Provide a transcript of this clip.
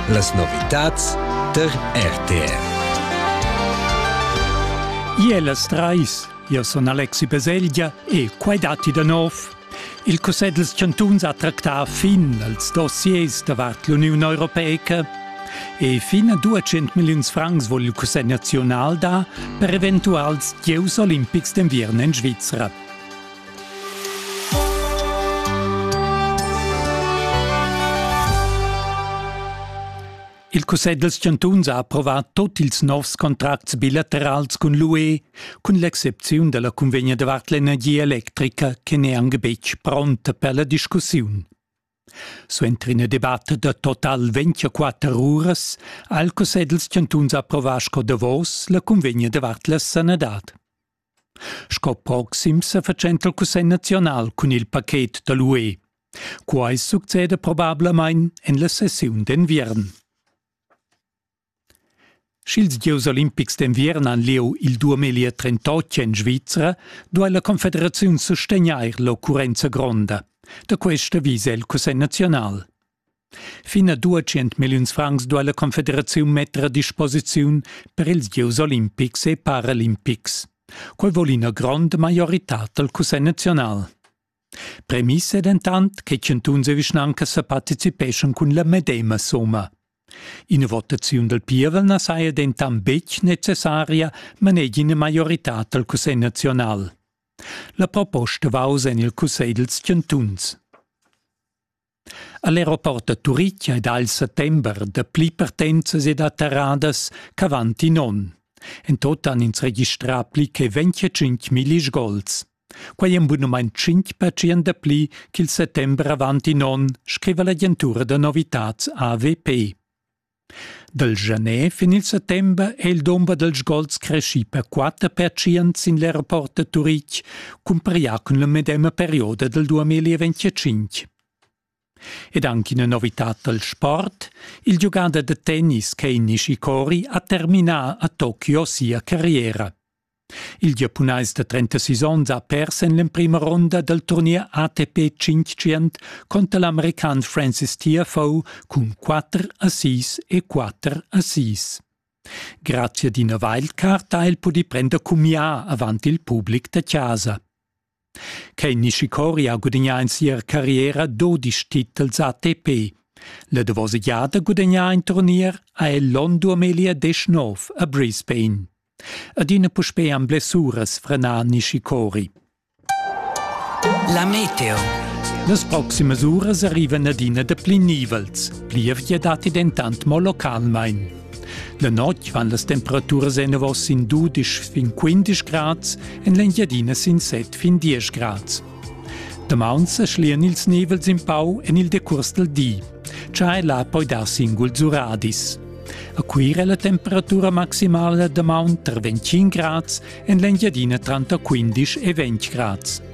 Las novitads tar RTR. Ie las trais, io son Alexi Peselgia e quai datti da nov. Il Cussegl dels Chantuns ha tractà fin als dossiers davart l'Uniun Europeica e fin a 200 milliuns francs vogl il Cussegl nazional da per eventuals gieus olimpics d'enviern en Svizra. Il Cussegl dals chantuns ha approvà tot ils novs contracts bilaterals cun l'UE, cun l'excepziun della convegna davart l'energia electrica che n'è anche betg pronta per la discussiun. Suenter ina debatta da total 24 uras ha il Cussegl dals chantuns approvà sco davos la convegna davart la sanadad. Sco proxim sefatschenta il Cussegl naziunal cun il paket da l'UE. Quai succeda probablamain en la sessiun d'enviern. Sch'ils gieus olimpics d'enviern han lieu il 2038 en Svizra, duai la Confederaziun sustegnair l'occurrenza gronda. Da questa visa il Cussegl naziunal. Fin a duecent milliuns francs duai la Confederaziun metter a disposiziun per ils gieus olimpics e paralimpics. Quai vul ina gronda maioritad dal Cussegl naziunal. Premiss è dentant che chantuns e vischnancas sa participeschan cun la medema summa. Ina votaziun dal pievel na saja dentant betg necessaria, manegia ina maioritad dal Cussegl naziunal. La proposta va oz en il Cussegl dals chantuns. All'aeroport da Turitg ei dal settember dapli partenzas ed atterradas ch'avant in onn. En tot han ins registrà pli che 25 milli sgols. Quei ein bunumein 5% dapli ch'il settember avant in onn, scriva l'agentura da novitads AWP. Dal Janer fin il settember è il dumber dals gols creschì per quatter pertschient sin l'aeroport da Turitg, cumpareglià cun la medema perioda dal 2025. Ed anche una novità dal sport, il giugader da tennis Kei Nishikori ha terminà a Tokio sia carriera. Il giapunais da 36 onns ha pers en l'emprima ronda dal turnier ATP 500 conter l'american Francis Tiafoe cun 4 assist e 4 assists. Grazia d'ina wildcard ha el pudì prender cumià avant il public da chasa. Quei Nishikori ha gudagnà en sia carriera dodisch titels ATP. La davosa giada gudagnà in turnier ha el l'onn 2019 a Brisbane. Adina puspei han blessuras frenà Nishikori. La meteo. Las proximas uras arrivan adina dapli nivels. Plievgia datti dentant mo localmain. La notg van las temperaturas enavos sin dudisch fin quindisch grads, en l'Engiadina sin set fin diesch grads. Damaun sa schlian ils nivels in pau en il decurs dal di. Chai là poi dar singuls uradis. A Cuira la temperatura maximala damaun tar 25 grads, en l'Engiadina tranter 15 e 20 grads.